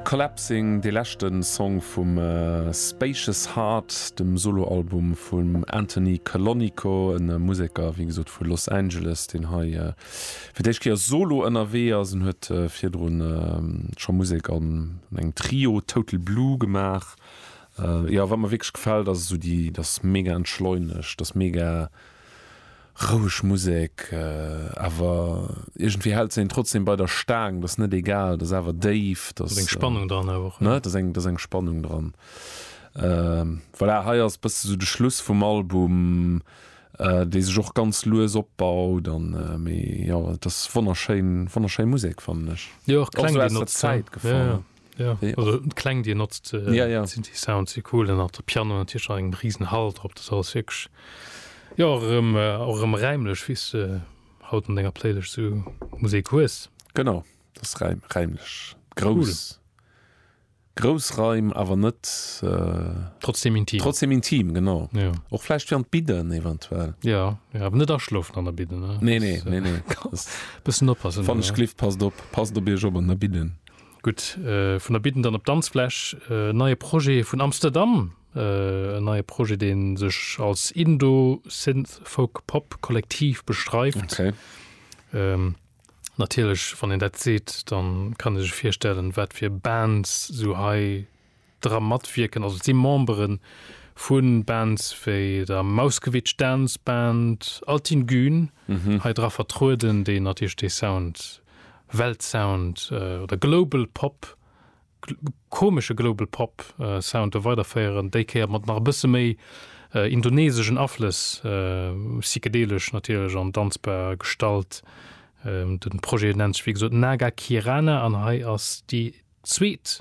Collapsing, dee leschte Song vum Spacious Heart, dem Soloalbum vum Anthony Calonico, e Museker, wéi gesot, vu Los Angeles, deen hei fir d'éischt Kéier solo ënnerwee ass. En huet virdru scho Musek an engem Trio, Total Blue, gemaach. Jo, wat mer wierklech gefält, ass esou déi, dat ass mega entschleunegt, dat ass mega. Roueg Musek, awer iergendwéi hält se een trotzdem bei der Staang, dass net egal, dass awer déif, dass. Ass eng Spannung dran awer och, ne? Dass eng, dass eng Spannung dran. Voilà, hei ass bësse esou de Schluss vum Album, dee sech och ganz lues opbaut an, mee jo, et ass wonnerschéin, wonnerschéi Musek, fannen ech. Jo, och kleng ginn op, ja. Ja, ja. Also, kleng dir notzt äh, ja, ja. sind die Sound sie cool nach der Piano an Tisch eng riesen Hal drop das alles wirklich ja auch im, äh, auch im reimlech wie du äh, haut an denger Playlist so Musik hues genau das reim, reimlech groß cool. Großreim aber net äh, trotzdem intim trotzdem intim genau ja. auch vielleicht während Biden eventuell ja, ja aber net erschlofen an der Biden ne nee, nee, nee, nee. Äh, bisschen oppassen von Schliff passt op passt op ihr Job an der Biden Gutt, vun der Bidden dann op d'Danzfläch. En neie Projet vun Amsterdam, en neie Projet, dee sech als Indo-Synth-Folk-Pop-Kollektiv beschreift. Natierlech, wann een dat seet, da kann ee sech virstellen, wat fir Bands esou hei. dra matwierken. Also et si Membere vu Bands wéi der Mauskewitsch Dance Band, Altin Gün hei dra vertrueden, déi natierlech dee Sound, Weltsound oder Global Pop, komesche Global Pop Sound do weiderféieren, déi Kéier mat nach e bësse méi indoneseschen Aflëss, psychedelesch natierlech an danzbar Gestalt. De Projet nennt sech wéi gesot Naga Kirana an hei ass déi zweet